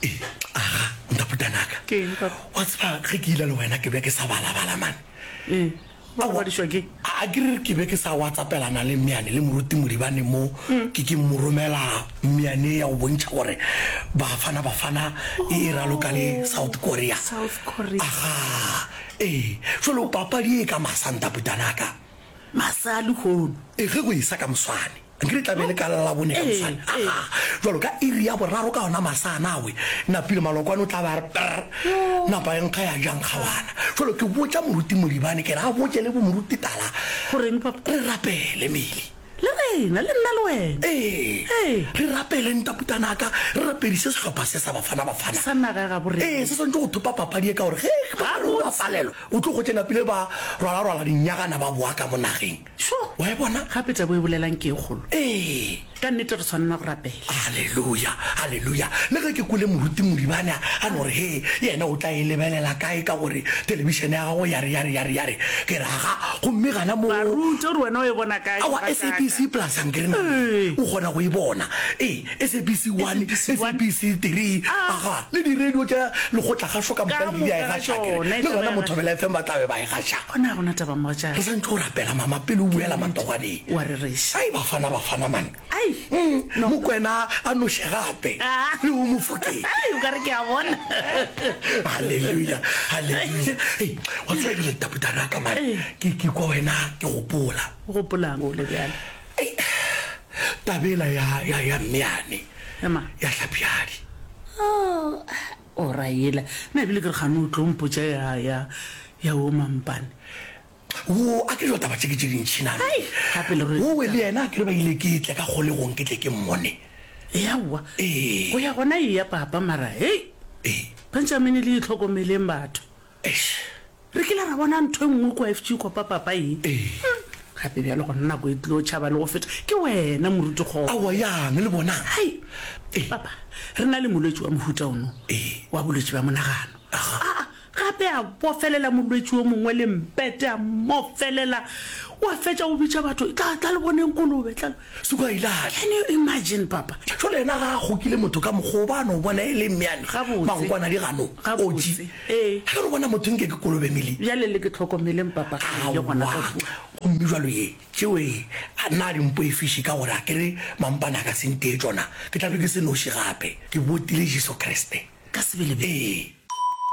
Ee, aga, nta putanaka. Ke eng, Papa? Wa tseba, ge ke ila le wena, ke be ke sa balabala, mane. Ee, ba robadišwa ke. A ke re ke be ke sa watsapelana le Mmeane le Moruti Modibane mo mm. ke ke mmoromela Mmeane ya go bontšha gore Bafana Bafana e e raloka le oh, South Korea. South Korea. Aga, ee, jalo papadi e ka masa nta putanaka. Masa lehono. E ge go e sa ka moswane. nke re tlabe le ka lalabone ka mosane jalo ka iri ya boraro ka ona masa nawe napile malokwane o tla ba re per napa e nkga ya jang kgawana jalo ke botsa moruti modibane ke re a botse le bo moruti tala goreng papa re rapele mele le rena le nna le wena ee re rapele ntaputanaka re rapedise sehlopha se sa bafana bafana sa naga ya gabo re ee se swantse go thopa papadi e ka gore ge ba re o bapalelwa o tlo go tsenapile ba rwalarwala dinyagana ba boa ka mo nageng Šo! Wa e bona? Gape taba e bolelang ke e kgolo. Ee. Ka nnete re swanela go rapela. Aleluya! Aleluya! Le ge ke kwele moruti Moribane a, a no re, He, yena o tla e lebelela kae ka gore telebišene ya gagwe ya re, ya re, ya re, ya re. Ke re, Aga, gomme gana moo. Baruti, o re, Wena o e bona kae? Aowa, SABC plus Ankerena, o kgona go e bona. Ee, SABC 1, SABC 3, aga, le diradio tša lekgotla-kgašo ka moka le di a e gaša, ke re, le gona mo Thobela FM ba tla be ba e gaša. Gona ga gona taba, mogatšaka. Re santše o rapela, mama, pele o boela matoganeng. O a rereša. Ai, Bafana, Bafana, man! Ai! Umm, Mokwena a noše gape. Le ho Mofokeng. Ai, o ka re ke a bona. Haleluya, haleluya. Ei, wa tseba ebile letapo tara ka mane, ke, ke kwa wena, ke gopola. O gopola'ng o le bjale? Ei, taba ela ya, ya, ya mme yane, Ya mang? ya Hlapjadi. Oh, o ra ela. Nna ebile ke re gane o tlo mpotša ya, ya, ya wo mampane. Wo, a ke jo taba tše ke tše dintšhi na. Ai, gape le re- Wo we le yena a ke re ba ile ke tle ka kgolegong ke tle ke mmone. Eaowa. Ee. Go ya gona eya, papa, mara, hei! Ee. Benjamini le itlhokomeleng batho. Eish! Re kile ra bona ntho e nngwe kua FG kua papapa ye. Ee. Gape bjalo gona nako e tlilo tšhaba le go feta ke wena moruti kgopo. Aowa yang le bona? Hai! Ee. Papa, re na le molwetši wa mohuta ono. Ee. Wa bolwetši bja monagano. Aha. Aa, gape a bofelela molwetši yo mongwe le mpete a mmofelela. Wa fetša o bitša batho, Tla, tla le boneng kolobe, tla. Suku a e lahle. Can you imagine, papa? Jwale yena ga a kgokile motho ka mokgwa o, ba no bona e le mmeane. Gabotse. Magokwana di gano. Gabotse. Oji. Ee. Ga no bona motho nke ke kolobe mele. Bjale le ke tlhokomeleng, papa, ga e le gona ka kua. Aowa. Gomme jwalo ye, tšeo e, a na di mpoefiše ka gore a ke re mampane a ka se ntee tšona, ke tla be ke se noši gape. Ke botile Jesu Kriste. Ka sebele bjale. Ee.